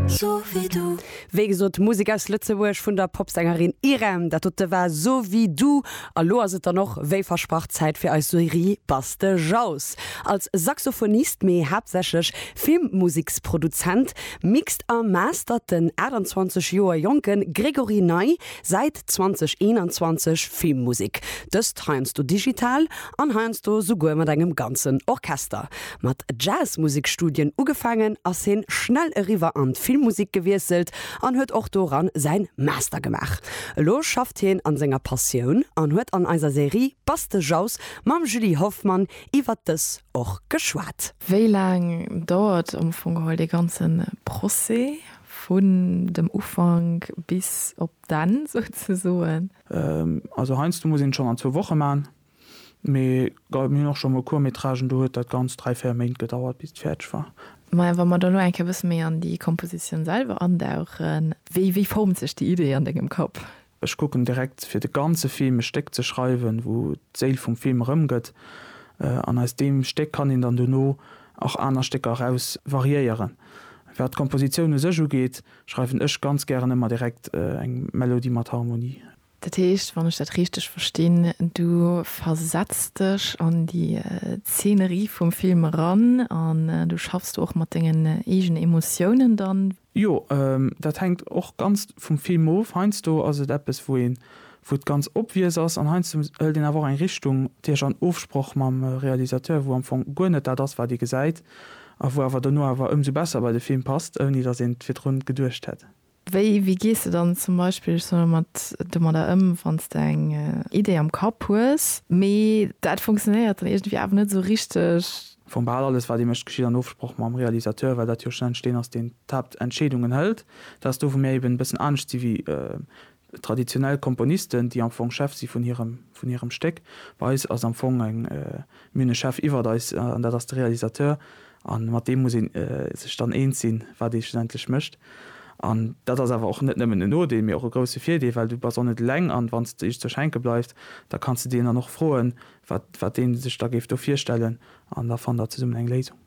So wie du. Wéi gesot, Musek aus Lëtzebuerg vun der Popsängerin Irem. Dat dote war So wie du. A lo ass et dann och wéi versprach Zäit fir eis Serie Buzz de Jaus. Als Saxophonist, mee haaptsächlech Filmmuseksproduzent, mixt a mastert den 28 Joer jonke Grégory Ney säit 2021 Filmmusek. Dëst heiansdo digital an heiansdo souguer mat engem ganzen Orchester. Mat Jazzmusikstudien ugefaangen, ass hien schnell eriwwer an d'Filmmusik gewiesselt an huet och doran säin Master gemaach. Elo schafft hien an senger Passioun an huet an eiser Serie Bass de Jauss mam Julie Hoffmann iwwert dës och geschwat. Wéi laang dauert am Fong geholl dee ganze Procès vun dem Ufank bis op d'Enn souzesoen? Also heiansdo muss een et schonn an zwou Woche maachen, mee mir hunn och schonn mol Court-métragen, do huet dat ganz dräi, véier Méint gedauert bis et fäerdeg war. Maja, wa mer da elo eng Kéier e bësse méi an déi Kompositioun selwer andauchen, wéi formt sech déi Idee an dengem Kapp? Ech kucken direkt fir de ganze Film e Stéck ze schreiwen, wou d'Séil vum Film erëmgëtt, an aus deem Stéck kann een dann dono och aner Stécker eraus variéieren. Wat d'Kompositioun u sech ugeet, Schreiwen ech ganz gären emmer direkt eng Melodie mat Harmonie. Dat heescht, wann ech dat richteg verstinn, du versetz dech an déi Zeenerie vum Film eran an du schaffs do och mat dengen eegene Emotiounen dann? Jo, dat hänkt och ganz vum Film of. Heiansdo ass et eppes, wou ee wou d'ganz obvious ass, an heiansdo hëlt een awer och eng Richtung, déi ech an Ofsproch mam Realisateur, wou am Fong guer net dat ass, wat ee gesäit, a wou awer dono awer ëmsou besser bei de Film passt, ouni datt een et virdru geduecht hätt. Wéi gees de dann zum Beispill, ech soen elo mat, domadder ëm, wann s de eng Idee am Kapp hues, mee dat funktionéiert dann iergendwéi awer net esou richteg? Am Fong bal alles, wat ee mécht, geschitt an Ofsproch mam Realisateur, well dat jo schlussendlech deen ass, deen d'Haaptentscheedungen hëlt. Dat ass do, wou mir eben e bëssen anescht si wéi Traditionell Komponisten, déi am Fong Chef si vun hirem, vun hirem Stéck. Bei eis ass am Fong eng, mir hunn e Chef iwwert eis an dat ass de Realisateur a mat deem muss ee sech dann eens sinn, wat ee schlussendlech mécht. An dat ass awer och net nëmmen en Nodeel, mee och e grousse Virdeel, well du bass och net eleng an wann s de just zur Schenke bleifs, da kanns de deen dann och froen, wat, wat dee sech da géif do virstellen an da fannt der zesummen eng Léisung.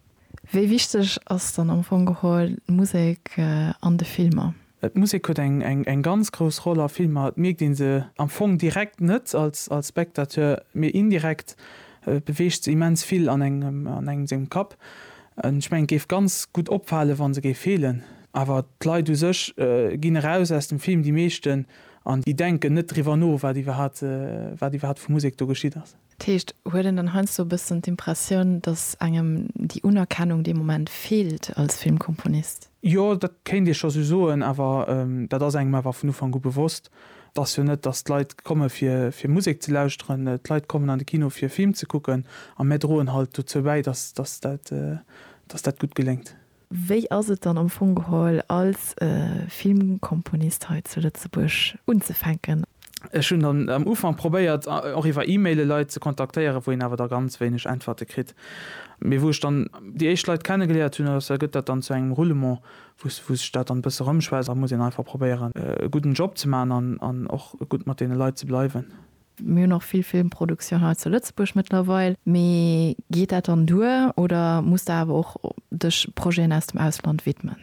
Wéi wichteg ass dann am Fong geholl d'Musek an de Filmer? D'Musek huet eng ganz grouss Roll a Filmer. Et mierkt ee se am Fong direkt net als Spectateur, mee indirekt beweegt se immens vill an engem sengem Kapp. Ech mengen, et géif ganz gutt opfalen, wa se géif feelen. Awer d'Leit u sech ginn eraus aus dem Film, déi meeschten, an déi denken net driwwer no, wat iwwerhaapt vu Musek do geschitt ass. Dat heescht, huet een dann heiansdo e bëssen d'Impressioun, datt engem déi Unerkennung dee Moment feelt als Filmkomponist? Jo, dat kéint ee scho sou soen, awer dat ass engem awer vun Ufank u bewosst. Et ass jo net, datt d'Leit komme fir Musek ze lauschteren. D'Leit kommen an de Kino fir e Film ze kucken a mär droen halt dozou bäi, datt dat gutt geléngt. Wéi ass et dann am Fong geholl als Filmkomponist hei zu Lëtzebuerg unzefänken? Ech hunn dann am Ufank probéiert och iwwer E-Maile Leit ze kontaktéieren, wou een awer da ganz wéineg Äntwerte kritt. Mee wou ech dann déi éischt Leit kenne geléiert hunn, ass, gëtt dat dann zu engem Roulement, wou sech dat dann e bësse rëmschwätzt. Da muss een einfach probéieren e gudden Job ze maachen an och gutt mat deene Leit ze bleiwen. Mir hunn och vill Filmproduktioun hei zu Lëtzebuerg mëttlerweil. Mee geet dat dann duer oder muss de awer och dech Projeten aus dem Ausland widmen?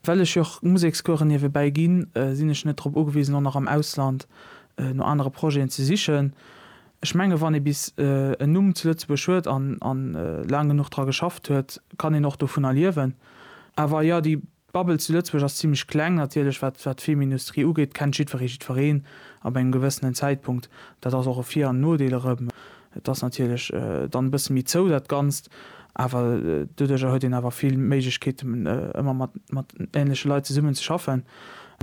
Well ech jo och Musekscouren niewebäi ginn, sinn ech net drop ugewisen, och nach am Ausland no anere Projeten ze sichen. Ech menge wann ee bis en Numm zu Lëtzebuerg huet an laang genuch dra geschafft huet, kann een och dovunner liewen. Awer jo, déi D'Bubble zu Lëtzebuerg ass zimlech kleng, natierlech, wat d'Filmindustrie ugeet, kennt jiddweree jiddwereen ab engem gewëssenen Zäitpunkt. Dat ass och e Vir an Nodeel erëm. Et ass natierlech dann e bësse méi zou, dat Ganzt, awer doduerjer huet een awer vill Méiglechkeeten, ëmmer mat änleche Leit zesummen ze schaffen.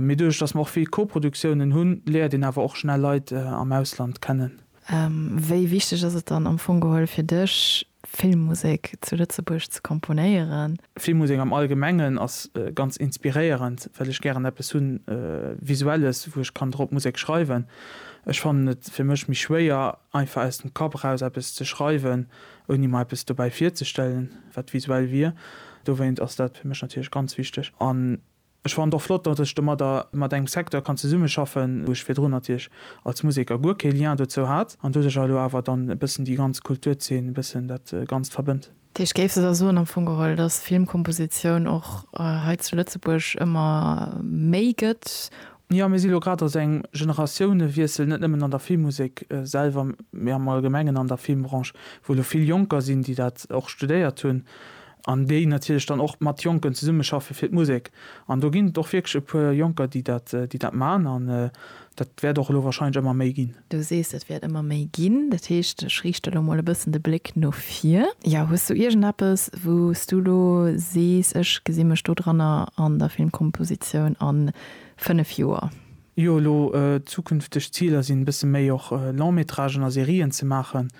Mee doduerch, datt mer och vill Koproduktiounen hunn, léiert een awer och schnell Leit am Ausland kennen. Wéi wichteg ass et dann am Fong geholl fir dech, Filmmusek zu Lëtzebuerg ze komponéieren. Filmmusek am Allgemengen ass ganz inspiréierend, well ech gären eppes hu Visuelles, wou ech kann drop Musek schreiwen. Ech fannen et fir mech méi schwéier, einfach aus dem Kapp eraus eppes ze schreiwen, ouni mer eppes dobäi virzestellen, wat visuell wier. Dowéint ass dat fir mech natierlech ganz wichteg. An Ech fannen et och flott, datt ech domadder mat engem Secteur kann zesummeschaffen, wou ech virdrun natierlech als Museker guer kee Lien dozou hat, an doduercher elo awer dann e bëssen déi ganz Kulturzeen, e bëssen dat Ganzt verbënnt. Dech géifs da soen am Fong geholl, datt Filmkompositioun och hei zu Lëtzebuerg ëmmer méi gëtt? Jo, mir si elo grad a sou engem Generatiounewiessel, net nëmmen an der Filmmusek selwer, mee am Allgemengen an der Filmbranche, wou elo vill Jonker sinn, déi dat och studéiert hunn, an déi natierlech dann och mat Jonken zesummeschaffe fir d'Musek an do ginn et och wierklech e puer Jonker, déi dat, déi dat man an dat wäert och elo wahrscheinlech ëmmer méi ginn. Du sees et wäert ëmmer méi ginn, dat heescht ech riichte lo mol e bëssen de Bléck no vir. Jo, hues du iergendeppes wou s du lo sees, ech gesi mech do dranner an der Filmkompositioun an 5 Joer? Jo, elo zukünfteg Ziler sinn e bësse méi och Long-métragen a Serien ze maachen,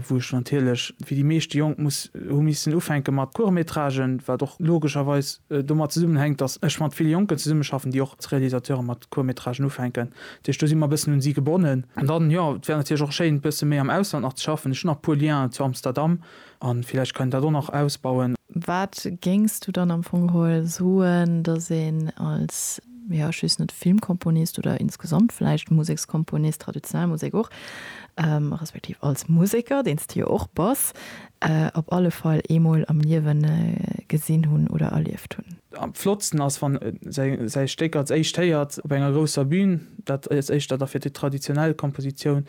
wou ech natierlech wéi déi meeschte Jonk muss hu missen ufänke mat Court-métragen, wat och logescherweis domat zesummenhänkt, datt ech mat ville Jonken zesummeschaffen, déi och als Realisateuren mat Court-métragen ufänken. Dat heescht do si mer e bëssen un si gebonnen. An dann, jo, et wär natierlech och schéin e bësse méi am Ausland nach ze schaffen. Ech hunn nach e puer Lienen zu Amsterdam, An villäicht kann een dat och nach ausbauen. Wat géings du dann am Fong geholl soen, datt een als, jo, just net Filmkomponist oder insgesamt vläicht Musekskomponist, traditionell Musek och, respektiv als Museker, deen s de jo och bass, op alle Fall eemol am Liewe gesinn hunn oder erlieft hunn? Am flottsten ass, wann e säi Stéck als éischt héiert op enger grousser Bün. Dat eischt, dat da fir déi traditionell Kompositioun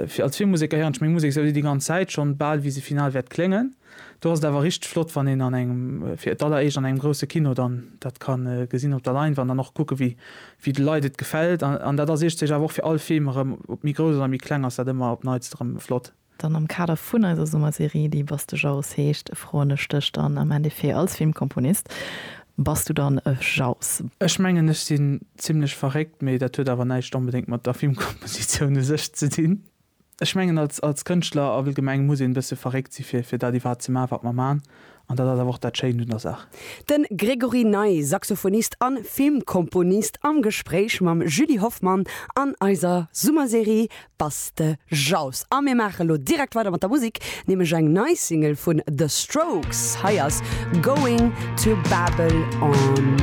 Fir als vill Museker héieren ech meng Musek esou di ganz Zäit schonn, bal wéi se final wäert kléngen. Do ass et awer richteg flott wann een an engem, fir d'alleréischt an engem grousse Kino dann dat ka gesinn op der Leinwand an och kucken wéi de Leit et gefält. An dat ass iergdesech awer och fir all Film erëm, ob méi grouss oder méi kleng ass dat ëmmer op neits erëm flott. Dann am Kader vun eiser Summerserie déi Bastejaus heescht, froen ech dech dann am Endeffet als Filmkomponist, Bass du dann e Jauss? Ech mengen ech sinn zimlech verréckt, mee dat huet awer näischt onbedéngt mat der Filmkompositioun u sech ze dinn. Ech mengen als als Kënschtler allgemeng muss een e bësse verréckt si fir fir dat iwwerhaapt ze maachen wat mer maan, an dat ass awer och dat Schéint un der Saach. De Grégory Ney, Saxophonist an Filmkomponist am Gespréich mam Julie Hoffmann an eiser Summerserie Bass de Jaus a mir maache lo direkt weider mat der Musik, nämlech eng nei Single vun The Strokes. Hei ass Going to Babel on.